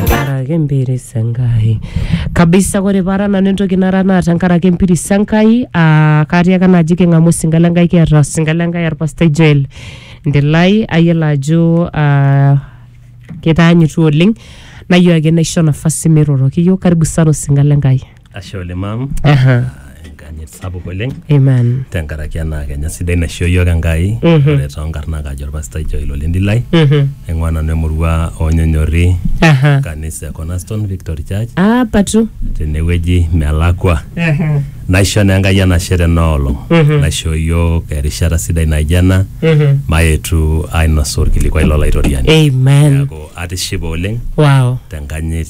tenkaraki empiris enkai kabisa kore paara nanu entoki nara naa tenkaraki empiris enkai aa katii ake naaji king'amu osinka lenkai kiata osinka lenkai orpastai joel ndilai ayiolo ajo aa kitaanyitua oleng nayieu ake naisho nafasi miroroki iyiok karibu sana osinka lenkai. Ashe oleng mam. Aha. Enkanyit sapuk oleng. Amen. Tenkaraki ena kenya sidai naishoo iyiook Enkai. Mhm. Ore toonkarnak ajo olpastai Joel Olendilai. Mhm. Aing'ua nanu emurua oonyonyorri Aha. kanisa e Cornerstone Victory Church Ah, patu. tenewueji melakwa. Aha. Naisho naa Enkai enashe tena olong. Mhm. Naishoo iyiook erishata sidai naijo ena Mhm. mayetu ainosu orkilikwai lolaitoriani. Amen. Neaku atishipe oleng Wow. tenkanyit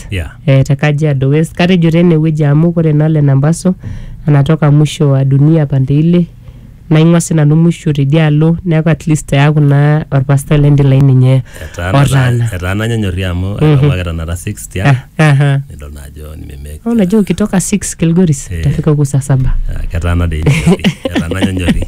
West Yeah. eh, te Kajiado West katejo tene wueji amu kore naa Lena Mbaso anatoka mwisho wa dunia pande ile naing'ua si nanu mwisho tidialo neeku at least eaku naa orpastai lendilai ninye Etaana- otaana etaana nyanyori amu Mhm. amu ake tanakata 6 tiang Ah, aha. nidol naa ajo nimemeki Au unajua ukitoka 6 Kilgoris Eh. utafika huku saa saba Ah, ketaana dei nyanyori etaana nyanyori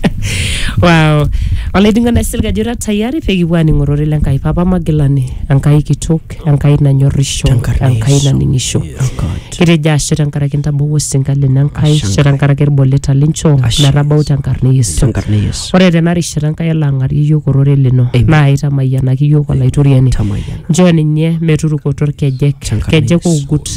wow olainining'oni aisil ajo ira tayari pekipuo aning'orore le Nkai papa magilani Enkai kitok Enkai nanyorrisho, Tenkarna Enkai Yesu. naning'isho. Oh God. Kitejo ashe tenkaraki intabawua osinka lino Enkai, Ashe ashe tenkaraki ilboleta linchoo Ashe. metabau tenkarna e Yesu. Tenkarna Yesu. Ore tena rishata Enkai elo ang'arie iyiook orore lino Amen. naa aitamayianaki iyiook Olaitoriani. Tamayiana. Njoo ninye meturukoto ilkejek, Tenkarna kejek Yesu. oogut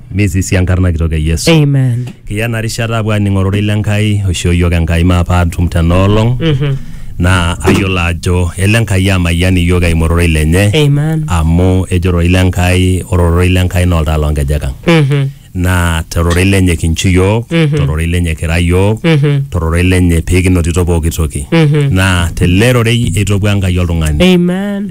misisi enkarna kitok e yesu Amen. kiya ena rishata apuo aning ororei le nkai oishoo iyiook enkai maa paatum tena olong Mhm. naa ayiolo ajo ele enkai amayian iyiook eimu ororei lenye Amen. amu ejo ororei le nkai ore ororei le nkai naa oltaa loonkejek ang Mhm. naa tororei lenye kinchu iyiook Mhm. tororei lenye kira iyiook Mhm. tororei lenye pee kinotito pooki toki Mhm. naa tele rorei eitopua enkai oltung'ani Amen.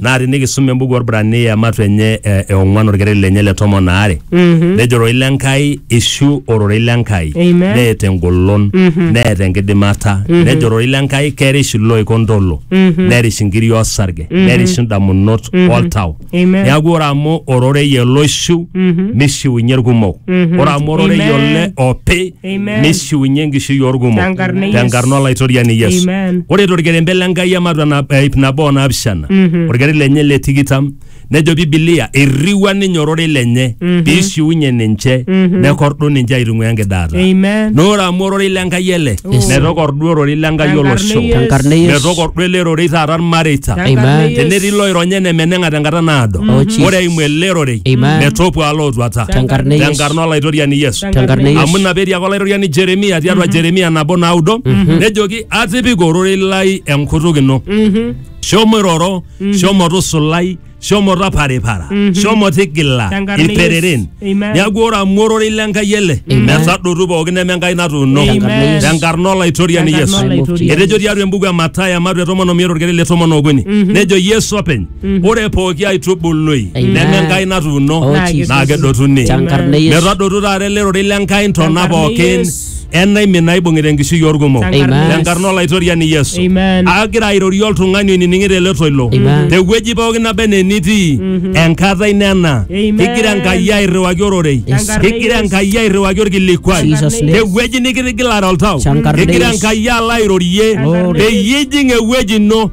naa tinikisum embuku Orbrania matu enye eh, e ong'uan orkereri lenye le tomon aare nejo ororei le Nkai ishu ororei le Nkai Amen. neeta engolon neeta enkidimata nejo ororei le Nkai kerish iloik ontolo nerish inkiri osarge nerish indamunot oltau Amen. neaku ore amu ororei ele oishiu nishiunye irkumok ore amu ororei Amen. ole opi Amen. neishiunye enkishui orkumok Tenkarna e Yesu. tenkarna olaitoriani yesu Amen. ore torkerembe le nkai ematua na- eh, ip nabo o naapishana Mhm. orkere lenye le tikitam nejo bibilia irriwua ninye orore lenye Mhm. piishiunye ninche Mhm. nekordu ninche aitung'ua enkidaata Amen. na ore amu ororei le nkai ele Yes. metokordu ororei le nkai Tenkarna olosho e Yesu. Tenkarna e Yesu. metokordu ele rorei taata irmareita Tenkarna Amen. e Yesu. tenetii loironye enemeneng'a tenkata naado Oh, Jesus. ore eimu ele rorei Amen. metopuaa lootuata Tenkarna e Yesu. tenkarna olaitoriani yesu Tenkarna e Yesu. amu ina peetiaka olairoriani jeremia tiatua jeremia nabo naudo nejoki atipika ororei lai enkutuk ino shomo iroro shomo tusulai shomo taparipara shomo tigila Tenkarna ilpereren Yesu. Amen. neaku ore amu ororei lenkai ele metadotu pookin neme enkai natuuno Amen. tenkarna olaitoriani Tenkarna yesu olaitoriani. etejo tiatua embuku e matayo ematu e tomon omiet orkere le tomon okuni nejo yesu openy ore pooki aitubului Amen. neme Enkai natuuno Oh, Naa Jesus. naa kedotuni Tenkarna Yesu. metadotu taata ele rorei le Enkai ntona Tenkarna pookin Yesu. enaimin naibung'ita enkishui orkumok Tenkarna Amen. tenkarna olaitoriani Yesu Amen. agira airorie oltung'ani oinining'ito ele toilo Amen. tewueji pookin naba enaa enitii enkata ino ena Amen. kigira Enkai airriwaki ororei Yes. kigira Enkai airriwaki orkilikuai Jesus name. tewueji nikitigilare oltau Tenkarna kigira Yesu. Enkai alo airorie Glory. peyie ijing ewueji ino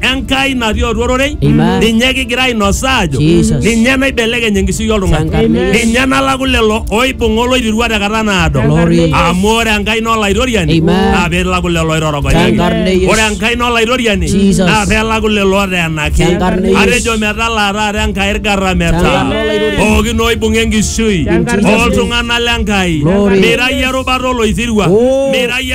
Enkai natii atua ororei Amen. ninye kigira ainosa aajo Jesus. ninye naibelekeny enkishui oltung'ani Changamia. ninye nalaku lelo oibung'a oloirirua tekata naado Glory. amu ore Enkai naa olaitoriani Amen. naa peelaku lelo oitorogonyaki Changarne Yesu. ore Enkai naa olaitoriani Jesus. naa peelaku lelo oteenaki Changarne Yesu. atejo metalaa taata Enkai irgarameta Changarne Olairoriani. pookin oibung'a enkishui Changarne Yesu. oltung'anak le Nkai Glory. mira iyie erubata oloisirua Oh. mira iyie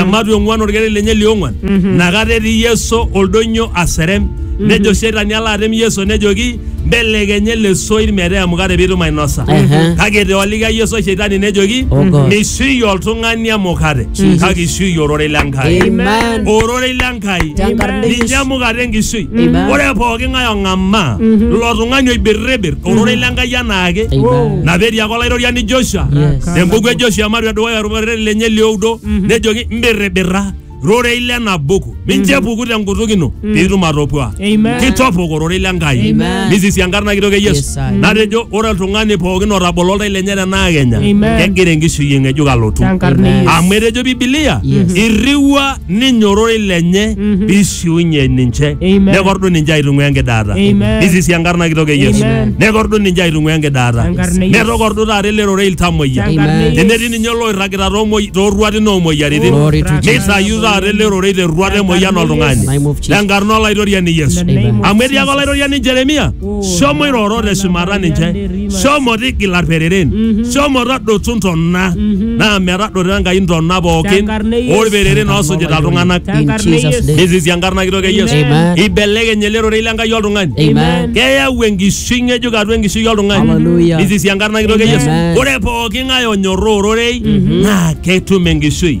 ematua ong'uan orkeret lenye liong'uan nakata etii yeso oldonyo aserem nejo shetani alo atem yeso nejoki mbelekenya ele soit metaa emukate piitum ainosa Ehe. kake etoolika yeso shetani nejoki Oh God. mishiui oltung'ani emukate kake ishiui ororei lenkai Amen. ororei lenkai Tenkarna ninye Yesu. emukate enkishui Amen. ore pooki ng'ae ong'amaa ilo tung'ani oibirribir ororei lenkai anaake Amen. napeti ake olaitoriani joshua Yes. tempuku e joshua ematua edukuya olorere lenye lioudo Mhm. nejoki mbirribirra rorei lena buku mincho epuku tenkutuk ino piitum atopua Amen. kitopok ororei le Enkai Amen. misisi enkarna kitok e Yesu Yes, I. natejo ore oltung'ani pookin otabolo oltau lenye tenaa kenya Amen. kegira enkishui ng'ejuk alotu Tenkarna e Amen. Yesu. amu etejo bibilia Yes. irriwua ninye ororei lenye Mhm. peishiunye ninche Amen. nekordu ninche aitung'ua enkidaata Amen. nisisi enkarna kitok e yesu Amen. nekordu ninche aitung'ua enkidaata Tenkarna e Yesu. netokordu taata ele rorei iltamoyia Tenkarna e Amen. Yesu. tenetii ninye oloirragita toomoi- tooruatin oomoyiaritin Glory to Jesus. neitayu taata ele rorei terruata emoyian oltung'ani Name of Jesus. tenkarna olaitoriani yesu In the name of amu etii ake Jesus. olaitoriani jeremia shomo iroro te shumata ninche shomo tigila irpereren shomo tadotu ntona naa metadoto enkai ntona pookin Tenkarna e Yesu. orpereren oosujita iltung'anak In Tenkarna e Jesus' Yesu. name. nisisi enkarna kitok e Yesu Amen. ibelekeny ele rorei lenkai oltung'ani Amen. keyau enkishui ng'ejuk atua enkishui oltung'ani Hallelujah. nisisi enkarna kitok e Yesu Amen. ore pooki ng'ae onyorraa ororei naa ketum enkishui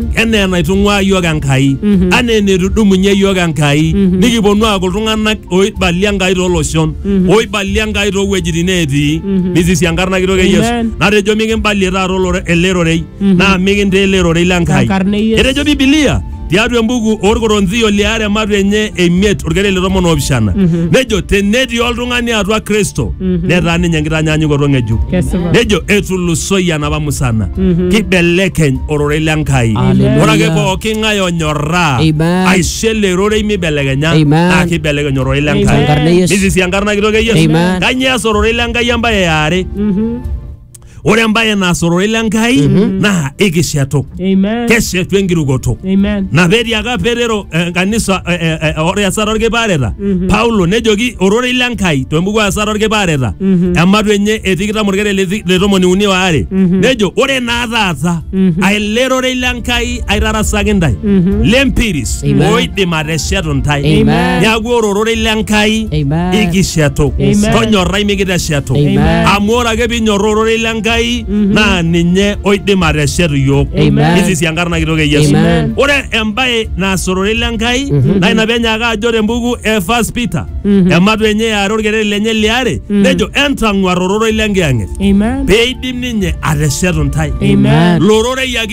enaa enaitung'uaa iyiook Enkai anaa eneitudumunye iyiook Enkai nikiponu aaku iltung'anak oibalie Enkai tooloshon oibalie Enkai toowuejitin neetii nisisi enkarna kitok e Yesu Amen. natejo mikimbalie taata olore- ele rorei naa mikintaa ele rorei le Enkai Tenkarna e Yesu. etejo Bibilia tiatua embuku orkoronzio liare ematu enye emiet orkereri le tomon oopishana nejo tenetii oltung'ani atua Kristo netaa ninye enkitanyaanyukoto ng'ejuk Kesipa. nejo etulusoyie enapa musana kibelekeny ororei le nkai Hallelujah. ore ake pooki ng'ae onyorraa Amen. aisho ele rorei mibelekenya Amen. naa kibelekeny ororei le Amen. nkai Enkarna e Yesu. nisisi enkarna kitok e yesu Amen. kanyio eas ororei le nkai embaye eare ore embaye naas ororei le nkai naa ikishetu Amen. keshetu enkirukoto Amen. na petiaka petero eh, kanisa eh, eh, eh, ore esata orkipaareta paulo nejoki ororei le nkai tembuku esata orkipaareta ematu enye etikitam orkere le ti- le tomoni uni waare nejo ore naa taata aele rorei le nkai aitarasaki ntae Mhm. lempiris Amen. oidim ateshetu ntae Amen. neaku ore ororei le nkai Amen. ikishetu Amen. tonyorrai mikiteshetu Amen. amu ore ake pinyorra ororei le nkai naa ninye oidim ateshetu iyiook Amen. nisisi enkarna kitok e yesu Amen. ore embae naas ororei le nkai naa ina penyaaka ajo tembuku e first peter ematu enye eare orkereri lenye liare nejo entang'uar ororei le nkiyang'et Amen. peidim ninye ateshetu ntae Amen. lororei ake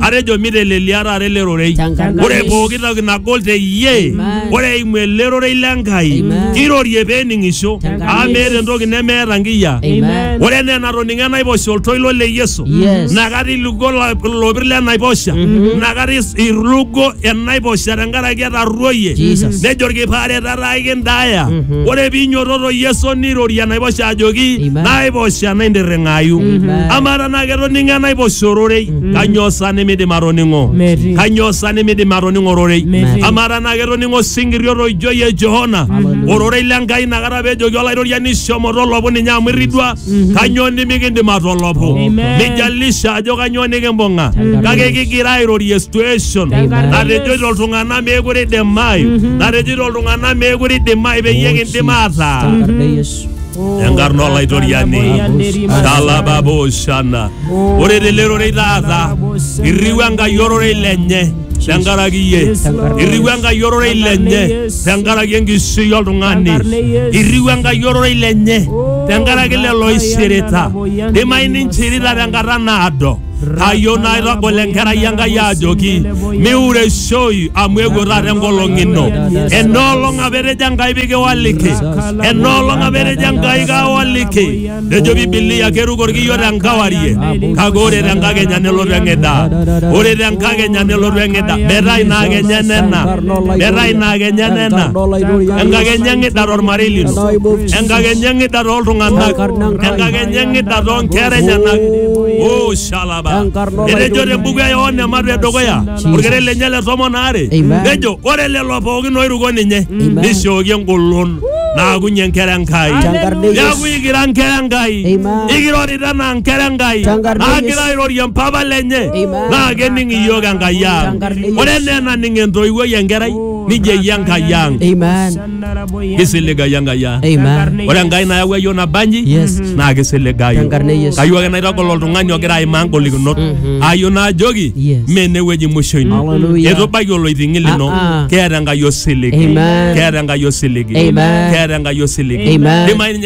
Atejo mitelelia taata ele rorei. Changamka. Ore pooki toki nagol te iyie, Amen. ore eimu ele rorei le Enkai, Amen. kirorie pee ening'isho, Changamka. amu meeta entoki nemeeta nkiyia. Amen. Ore enaa enatoning'o enaiposha oltoilo le Yesu, Yes. nakata ilugo la- ilopir le naiposha, nakata is- irugo enaiposha tenkaraki etarruoyie, Jesus. nejo olkipaare tataa aikindaaya. Ore piinyototo Yesu nirorie enaiposha ajoki, Amen. naiposha naintirring'ayu. Amen. Amaa tenaa ketoning'o enaiposha ororei, Kanyoo sa nimidim atoning'o? Metii. Kanyoo sa nimidim atoning'o ororei? Metii. Amaa tenaa ketoning'o osinkiri otoijoi e Johana ororei le Nkai inakata pejoki Olaitoriani shomo tolopu ninye amu irridua, kanyoo nimikindim atolopu? Amen. Mijalisha ajo kanyoo nikimbung'a, kake kigira airorie situation Tenkaraki natejoito iltung'anak meekure eidimayu, natejoito iltung'anak meekure eidimayu peyie kindim aataa. Tenkarna e Yesu. enkarna olaitoriani talababoshana ore tele rorei taata irriu enkai ororei lenye tenkaraki iyie irriu enkai ororei lenye tenkaraki enkishui oltung'ani irriu enkai ororei lenye tenkaraki lelo oishirita dimai ninchirita tenkata naado ayieu naitagol enkerai enkai ajoki miureishoi amu eewuo taata enkolong ino enoolong apa etejo enkai pikiwaliki enoolong apa etejo enkai kawaliki nejo bibilia keruko orkiyo tenkawarie kake ore tenkakenya nelotu eng'ida ore tenkakenya nelotu eng'ida metaa ina akenya enena metaa ina akenya enena enkakenya eng'ida tormarei lino enkakenya eng'ida toltung'anak enkakenya enyang'ita too nkera enyenak o shalaba Enkarna etejo olaitobirani. tembuku e yohana ematu edukuya orkere lenye le tomon aare Amen. nejo ore lelo pookin oiruko ninye nishooki engolon naakunye enkera enkai Tenkarna e neaku Yesu. ikira nkera enkai Amen. ikirorita anaa nkera enkai Tenkarna e naagira Yesu. airorie mpapa lenye Amen. naa kening iyiook enkai ang Tenkarna e Yesu. ore enaa enaning entoiwuoi enkerai nijeyie enkai ang Amen. kisiligayu enkai ang Amen. ore enkai nayawua yiok nabanji Yes. naa kisiligayu Tenkarna e Yesu. kayieu ake naitagol oltung'ani ogira aimaa ngolikinot ayieu naajoki Yes. mee enewueji musho ino Hallelujah. etubaiki oloiting'i lino Ah, ah. keeta enkai osiligi Amen. keeta enkai osiligi Amen. keeta enkai osiligi Amen. Dimayu ninye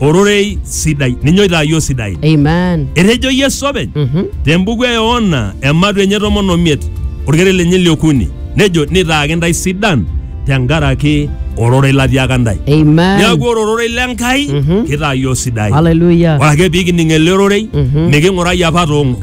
ororei sidai. Ninye oitaa iyiook sidain. Amen. Etejo Yesu openy Mhm. te mbuku e Yohana ematu enye tomon omiet orkere lenye liokuni nejo nitaaki ntae sidan tenkaraki ororei latiaka ntae. Amen. Neaku ore ororei le Nkai Mhm. kitaa iyiook sidain. Hallelujah. Ore ake pikining ele ororei Mhm. niking'urai apa toong'ok.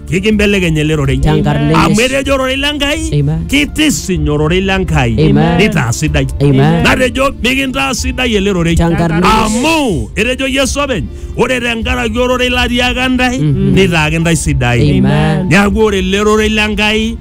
kikimbelekeny ele rorei Tenkarna Yesu. amu etejo ororei le Nkai Amen. kitisiny ororei le Nkai Amen. nitaa sidai Amen. natejo mikintaa sidai ele rorei Tenkarna Yesu. amu etejo Yesu openy ore tenkaraki ororei latiaka ntae nitaaki ntae sidai Amen. neaku ore ele rorei le Nkai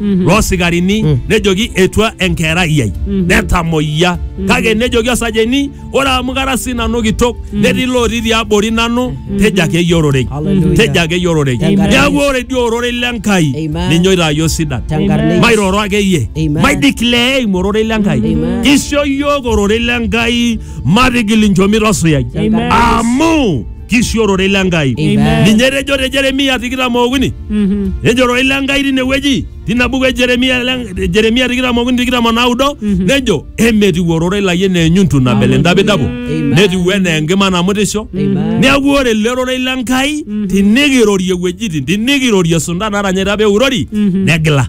Mhm. loo sikarini Mm. nejoki etua enkerai ai Mhm. netamoyia kake nejoki osajeni ore amu kara sii nanu kitok netii looti tiabori nanu tejo ake iyie ororei Hallelujah. tejo ake iyie ororei Amen. neeku ore dii ororei le Nkai Amen. ninye oitaayio sidan Tenkarna Yesu. mairoro ake iyie Amen. maideclare eimu ororei le Nkai Amen. kisho iyiook ororei le Nkai matigil inchomit osuyai Amen. amu kisiorore ile Enkai. Amen. Ninye etejo te Jeremia tikitam okuni, Mhm. ejoro ile Enkai tinewueji tina buku e Jeremia le- Jeremia tikitam okuni tikitam onaudo nejo emetiu ororei lai enaa enyuntu nabel entapitapo Amen. netiu enaa enkima namutisho Amen. neeku ore ele rorei le Enkai tinikirorie wuejitin tinikirorie sunta natanyaita pee eurori negila